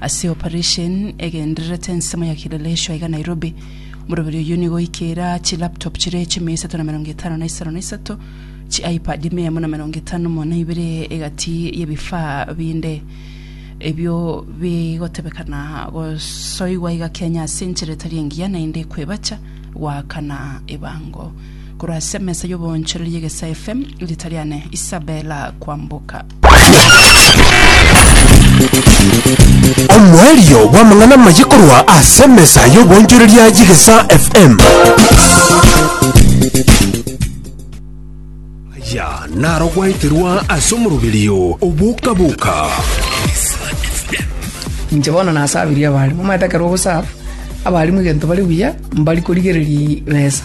Ase operation egendererete ensemo ya Kileleshwa iga Nairobi, omoroberi oyio nigo oikeire aa chilaptop chire chimia isato na emerongo etano na isano na isato, chiipad mia emo na emerongo etano mo na ibere egati y'ebifaa binde ebio bigotebekana gosoigwa iga Kenya ase enchera etari engiya naende kwebacha goakana ebango. Korwa ase emesa y'oboonchoreria Egesaa FM, rita riane Isabella Kwamboka. Omoerio bw'amang'ana amaye korwa ase emesa y'oboonchoreria ya Chigesa FM. Aya naro gwaeterwa ase omoroberio oboka-boka. Inche bono nasabirie abarimu, omanyete ekero ogosaaba abarimu egento bare buya, mbari korigereria besa.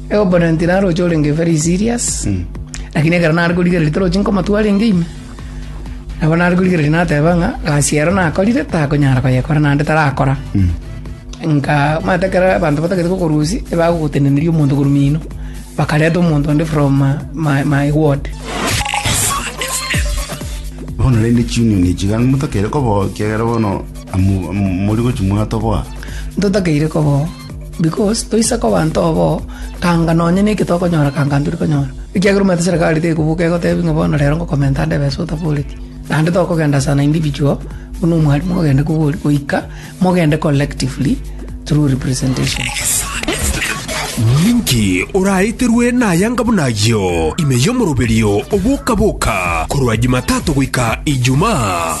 Eoponenti naroche orenge very serious lakini ekero nare korigereria torochi nkomatua arenge ime nabo nare korigereria nateba ng'a gasi ero nakorire takonyara koyekora naende tarakora nka omanyete ekero abanto batagete kokorusia ebagogotendeneria omonto korwa mino bakareta omonto onde from my my ward Bono rende chiunion echi iga motakere koboa ekiagera bono amu- amu- mori gochi mwatoboa. ntotakeire koboa Because toise koba nto bo, kanga nonye neke tokonyora kanga ntiri konyora. Ekiagera omanyete serikali tekobuka egotebi ng'a bono rero ngokomenta ande ebesa otaboreti. Naende tokogenda as an individual, buna omwarimu ogende kogori, goika mogende collectively through representation. Ninki oraeterwe nayanga buna ayio ime y'omoroberio oboka-boka korwa Jumatato goika Ijumaa?